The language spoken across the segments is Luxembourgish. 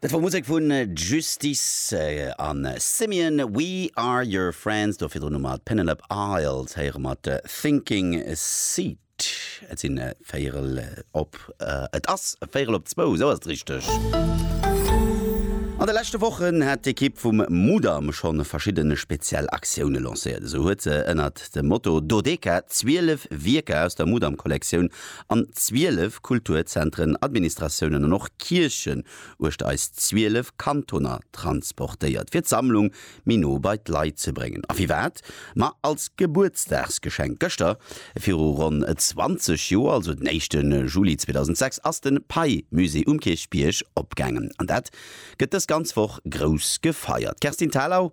Dat wor Musek vun Justice an Simian, We Are Your Friends. Do virdrun hu mer d'Penelope Isles héiere mat Thinking Seat. Et sinn véierel op, et ass véierel op zwou, esou ass et richteg. An de leschte Wochen hat d'Ekipp vum Mudam schonn verschidde speziell Aktioune lancéiert. Esou huet se ënnert dem Motto Dodeca 12 Wierker aus der Mudam-Kollektioun an 12 Kulturzentren, Administratiounen an och Kierchen uechter eis 12 Kantoner transportéiert, fir d'Sammlung méi no bei d'Leit ze bréngen. A firwat? Ma als Gebuertsdagsgeschenk. Gëschter viru ronn 20 Joer, also den éischten Juli 2006, ass de Pei-Musée um Kierchbierg opgaangen. An dat gëtt dës ganz Woch grouss gefeiert. D'Kerstin Thalau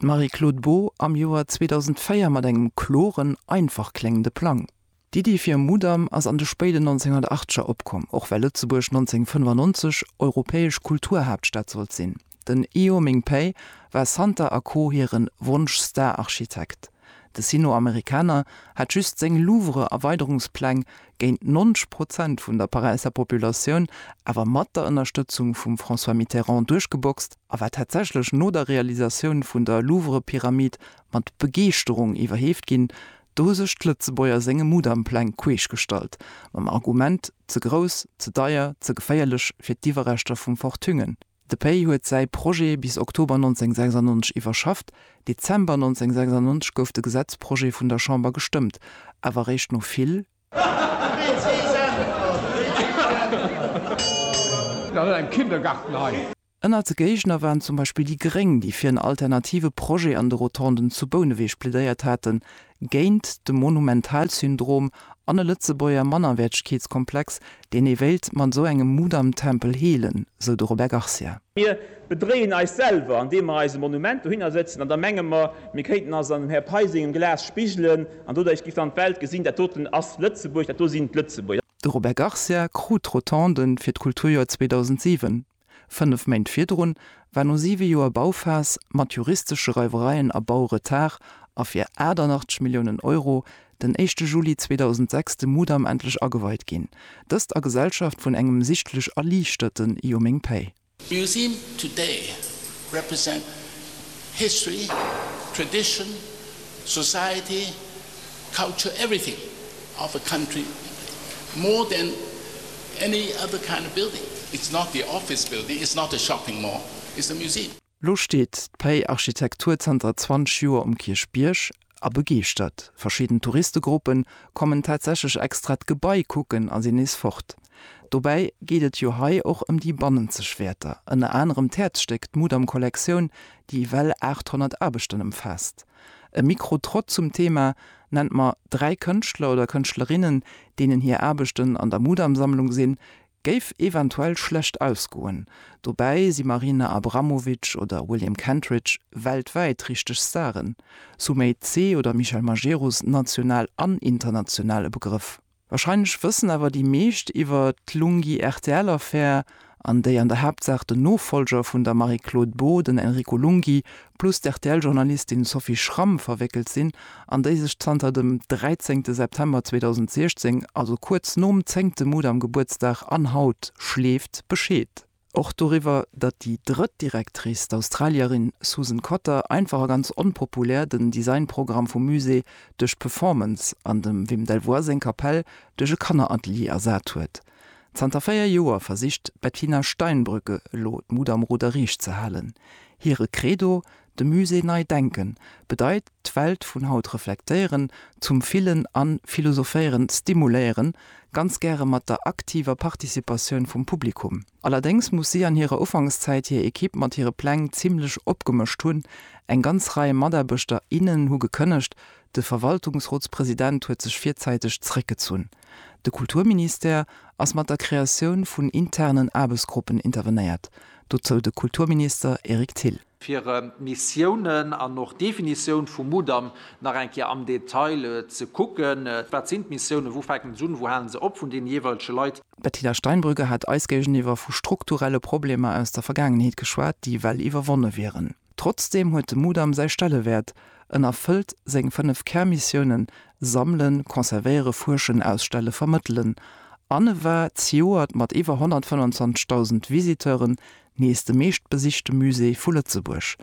D'Marie-Claude Beaud am Joer 2004 mat engem kloren, einfach kléngende Plang. D'Iddi fir e Mudam ass an de spéiden 1980er opkomm, och well Lëtzebuerg 1995 europäesch Kulturhaaptstad sollt sinn. Den Io Ming Pei war Santa a Co. Hire Wonsch-Star-Architekt. De Sino-Amerikaner hat just seng Louvre-Erweiderungspläng géint 90 Prozent vun der Paräisser Populatioun, awer mat der Ënnerstëtzung vum François Mitterrand duerchgeboxt a war tatsächlech no der Realisatioun vun der Louvre-Pyramid mat Begeeschterung iwwerheeft ginn. Do hu sech d'Lëtzebuerger senge Mudam-Pläng queesch gestallt, mam Argument, ze grouss, ze deier, ze geféierlech fir d'Iwwerreschter vum Fortungen. De Pei huet säi Projet bis Oktober 1996 iwwerschafft. Dezember 1996 gouf de Gesetzprojet vun der Chamber gestëmmt, awer eréischt no vill. Ënnert de Géigner waren zum Beispill déi Gréng, déi fir en alternative Projet an de Rotonden zu Bouneweg plädéiert haten, géint de Monumentalsyndrom an e Lëtzebuerger Mannerwäertegkeetskomplex, deen ee wéilt mat esou engem Mudamtempel heelen, sou de Robert Garcia. Mir bedréien eis selwer, andeem mer eis e Monument dohinner sëtzen an da menge mer, mir kéinten eis an dem Här Pei sengem Glas spigelen an doduerch géif dann d'Welt gesinn, dat doten ass Lëtzebuerg, dat do sinn d'Lëtzebuerger. De Robert Garcia krut d'Rotonde fir d'Kulturjoer 2007 Fënnef Méint virdrun war no siwe Joer Bauphas, mat juristesche Reiwereien a Bauretard, a fir 88 Milliounen Euro den éischte Juli 2006 de Mudam endlech ageweit ginn. Dëst a Gesellschaft vun engem sichtlech erliichterte Jo meng Päi! Museum today represent history, tradition, society Culture everything of a country more than any other kind of building. It's not the office building, it's not a shopping mall, it's a museum. Lo steet d'Pei Architektur zanter 20 Joer um Kierchbierg a begeeschtert. Verschidden Touristegruppe kommen tatsächlech extra d'Gebai kucken a sinn nees fort. Dobäi geet et jo hei och ëm déi bannenzeg Wäerter, ënner anerem d'Häerzstéck, d'Mudam-Kollektioun, déi ewell 800 Aarbechten ëmfaasst. E Mikro-Trott zum Thema Nennt mer dräi Kënschtler oder Kënschtlerinnen, deenen hir Aarbechten an der Mudam-Sammlung sinn, géif eventuell schlecht ausgoen. Dobäi si Marina Abramovic oder William Kentridge weltwäit richteg Staren, Sumay Tse oder Michel Majerus national an international e Begrëff. Wahrscheinlech wëssen awer déi meescht iwwer d'Lunghi-RTL-Affär, an déi an der Haaptsaach den Nofollger vun der Marie-Claude Beaud, den Enrico Lunghi, plus d'RTL-Journalistin Sophie Schramm verwéckelt sinn, an déi sech zanter dem 13 September 2016, also kuerz nom zéngte Mudam-Gebuertsdag an haut, schleeft Bescheed. Och doriwwer, datt déi drëtt Directrice, d'Australierin Susan Cotter, einfach a ganz onpopulär den Designprogramm vum Musée duerch d'Performance an dem Wim Delvoye seng Kapell duerch e Kanneratelier ersat huet. Zanter véier Joer versicht d'Bettina Steinbrügge elo d'Mut am Ruder riicht ze halen. Hire Credo, De Musée nei denken bedeit d'Welt vun haut reflektéieren, zum Fillen a Philosophéieren stimuléieren, ganz gäre mat der aktiver Participatioun vum Publikum. Allerdéngs muss si an hirer Ufankszäit hir Ekipp mat hire Pläng zimmlech opgemëscht hunn. Eng ganz Rei Mataarbechter, innen hu gekënnegt, de Verwaltungsrotspresident huet sech virzäiteg zeréckgezunn. De Kulturministère ass mat der Kreatioun vun internen Aarbechtsgruppen intervenéiert, dozou de Kulturminister Eric Thill. fir Missiounen an och d'Definitioun vum Mudam nach eng Kéier am Detail ze kucken, wat sinn d'Missiounen, wou fänken se un, wou halen se op, vun deene jeeweilege Leit. D'Bettina Steinbrügge hat eis géigeniwwer vu strukturelle Problemer aus der Vergaangenheet geschwat, déi well iwwerwonne wieren. Trotzdeem huet de Mudam säi Stellewäert, en erfëllt seng fënnef Kärmissiounen, Sammelen, Conservéiere, Fuerschen, Ausstelle, Vermëttelen, an e war zejoert mat iwwer 125.000 Visiteuren Nees de meeschtbesichte Musée vu Lëtzebuerg.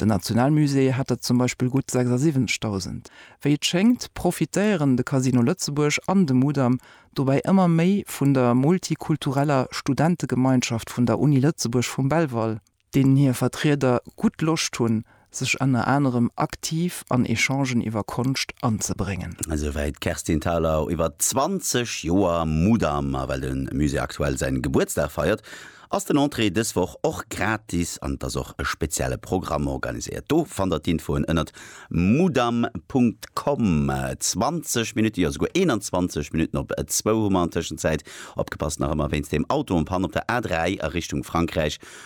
Den Nationalmusée hat der zum Beispill gutt 76.000. Wéi et schéngt, profitéieren de Casino Lëtzebuerg an de Mudam dobäi ëmmer méi vun der multikultureller Studentegemeinschaft vun der Uni Lëtzebuerg vum Belval, deenen hir Vertrieder gutt Loscht hunn, sech ënner anerem aktiv an Echangen iwwer Konscht anzebréngen. Esouwäit d'Kerstin Thalau iwwer 20 Joer Mudam. A well de Musée aktuell säin Gebuertsdag feiert, ass den Entrée dës Woch och gratis an et ass och e spezielle Programm organiséiert. Do fannt der d'Infoen ënnert mudam.com. 20 Minutten, jo souguer 21 Minutten op zwou hu mer an Tëschenzäit opgepasst nach ëmmer wéinst deem Auto en panne op der A3 a Richtung Frankräich